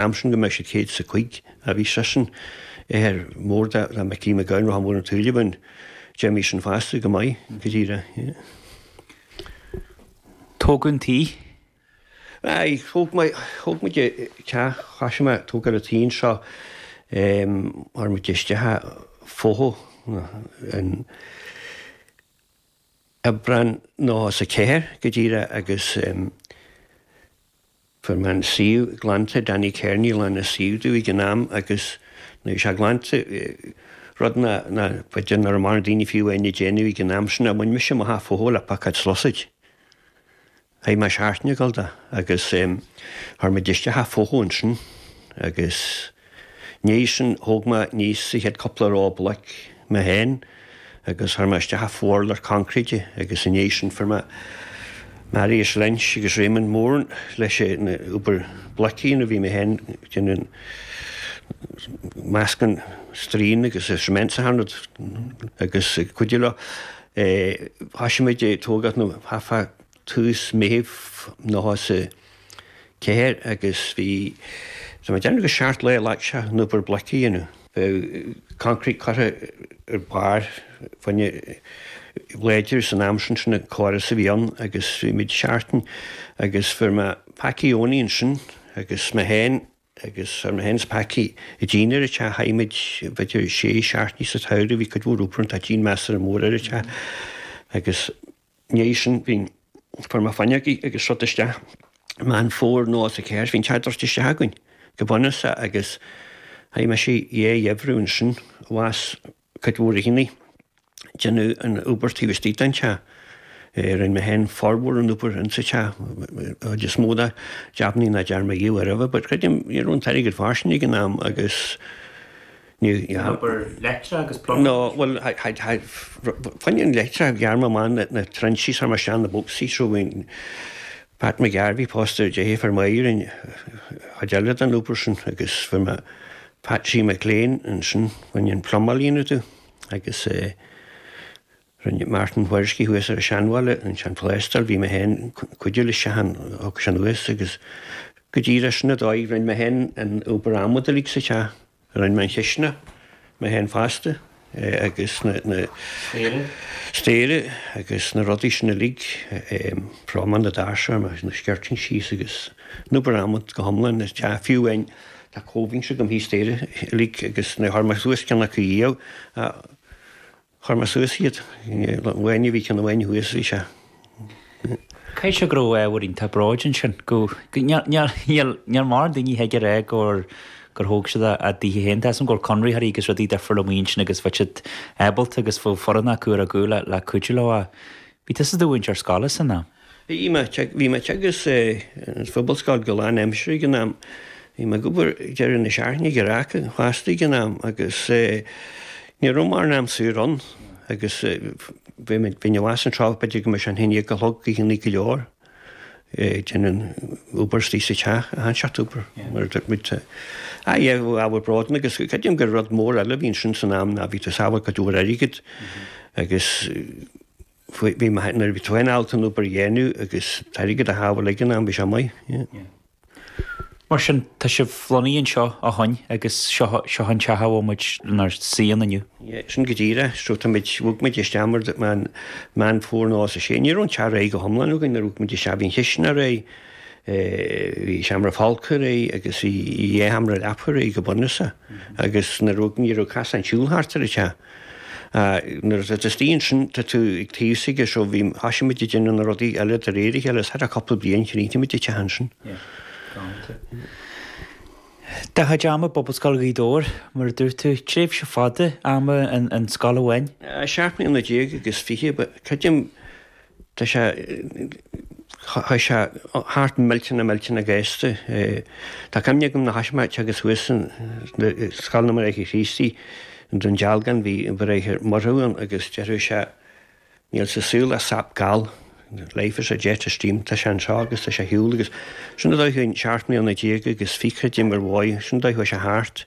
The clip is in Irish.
am sin go mbeidh siad céad is a cúig a bhí seisean athair mór dá mbeadh Liam Mac Gabhann rachadh mór an tsaoil againn déarfaidh sin fosta go maith go díreach tógáil an tí. Aye, thóg mé, thóg muid teach, thoisigh mé ag tógáil an tí seo, chuir muid isteach an fothú, an, Aibreán nócha ceathair go díreach agus fuair mé an suíomh glanta, Danny Kearney a ghlan an suíomh domh ag an am agus nó bhí sé glanta, rud nár b'fhéidir nach raibh mórán daoine fiú á dhéanamh ag an am sin, ach bhain mise amach an fothú le piocóid is sluasaid. Chaith mé seachtain ag gabháil dó agus chuir muid isteach an fothú ansin agus ina dhiaidh sin, thóg mé aníos an chéad chúpla ró bloic mé féin agus chuir mé isteach an fo-urlár concrete agus ina dhiaidh sin fuair mé Marius Lynch agus Raymond Mourne leis an obair bloic a dhéanamh bhí mé féin ag déanamh an meascán straín agus cement sa hard agus ag cuidiú leo. Thoisigh muid ag tógáil nó chaithfeá dtús Mheithimh nócha ceathair agus bhí Tá mé ag déanamh gur seacht lá a ghlac sé an obair bloic a dhéanamh. bheadh concrete curtha ar barr fáinne láidir san am sin sin an córas a bhí ann agus bhí muid seachtain agus fuair mé Packie Owney ansin agus mé féin agus fuair mé féin is Packie an díon ar an teach chaith muid b'fhéidir sé seachtainí sa tsamhradh bhí cuid mhór obair ann tá díon measartha mór ar an teach agus ndiaidh sin bhí fuair mé fuinneogaí agus rud isteach Meán Fómhair nócha ceathair bhí an teach druidte isteach againn go bunúsach agus chaith mise an chéad gheimhreadh ansin abhus cuid mhór oícheanta ag déanamh an obair taobh istigh den teach rinne mé féin formhór an obair in sa teach chuid is mó de jabannaí nach dtearn mé riamh roimhe but creidim ní raibh an t-airgead fairsing ag an am agus An obair leictreach agus plumbing. No, bhuel, baineann leictreach ghearr mé amach na trinsí is chuir mé isteach na boscaí so rinn Pat McGarvey pósta ar dheirfiúr Mháirín, chuid eile den obair sin agus fuair mé Patsy McLean ansin, baineann plumáil a dhéanamh domh agus rinne Martin Wierzki thuas ar an seanbhaile, ansin an plástráil, bhí mé féin ag cuidiú leisean, thug sin thuas agus go díreach sin an dóigh, rinne mé féin an obair adhmad uilig sa teach. Rinn mé an chisteanach, mé féin fosta, agus na. Staighre. Staighre, agus na rudaí sin uilig, frámaí na ndoirse, na skirtings agus na bramoint go hiomlán, is deá fiú é, tá comhbhinse agam thíos, staighre uilig, agus níor chuir mé suas ceann acu riamh. Chuir mé suas iad. Nuair a bhí, ceann amháin thuas, bhí sé. Caithfidh sé go raibh ábhar iontach bróid ansin, go, níl mórán daoine a thig a rá gur, gur thóg siad a, a dtithe féin. Tá 'fhios a'm go raibh conraitheoirí agus rudaí difriúla amuigh ansin agus bhí siad ábalta agus bhí foireann acu acu le, le cuidiú leo ach bhí tusa i do mhúinteoir scoile san am. Bhí mé ag teagasc sa phobalscoil go lánaimseartha ag an am. Bhí mé ag obair ag deireadh na seachtaine ag raic an chosta ag an am agus ní raibh mórán am saor ann agus bheinn abhus anseo b'fhéidir go mbeadh sé an haon déag a chlog oícheannaí go leor ag déanamh an obair istoigh sa teach, a shainseacht obair mar a dúirt muid. Ah yeah, bhí ábhar bróid ann agus creidim gur rud mór eile a bhí ansin san am ná bhí tú ag sábháil cuid mhór airgead agus, bhí mé, nuair a bhí tú féin ábalta an obair a dhéanamh agus an t-airgead a shábháil ag an am, bhí sé maith, yeah. Mar sin, tá sibh lonnaithe anseo ó shoin agus seo, seo an teach a bhfuil muid inár suí ann inniu. Yeah, sin go díreach, so tá muid, bhog muid isteach mar a dúirt mé, Meán Fómhair 96, ní raibh an teach réidh go hiomlán againn nuair a bhog muid isteach, bhí an chisteanach réidh, eh, bhí seomra folctha réidh agus bhí dhá sheomra leapacha réidh go bunúsach agus nuair a bhog, ní raibh casáin siúil thart ar an teach. Nuair a theastaíonn sin, tá tú ag taobh s'aige seo, bhí, thoisigh muid ag déanamh na rudaí eile de réir a chéile, is thar cúpla bliain chríochnaigh muid an teach ansin. Do chuid ama i bPobalscoil Ghaoth Dobhair, mar a dúirt tú, tréimhse fada ama in scoil amháin. Seacht mbliana déag agus fiche, creidim. Tá sé, chuaigh sé thart millteanach millteanach gasta. Tá cuimhne agam na haischmeáite agus thuas san, Scoil na mBráithre Críostaí i nDún Dealgan, bhí an Bráthair Murchú ann agus deireadh sé níl sa saol ach sap gal, life is a jet of steam, tá sé anseo agus tá sé ar shiúl agus sin an dóigh, seacht mbliana déag agus fiche, d'imigh uaim, sin an dóigh a chuaigh sé thart.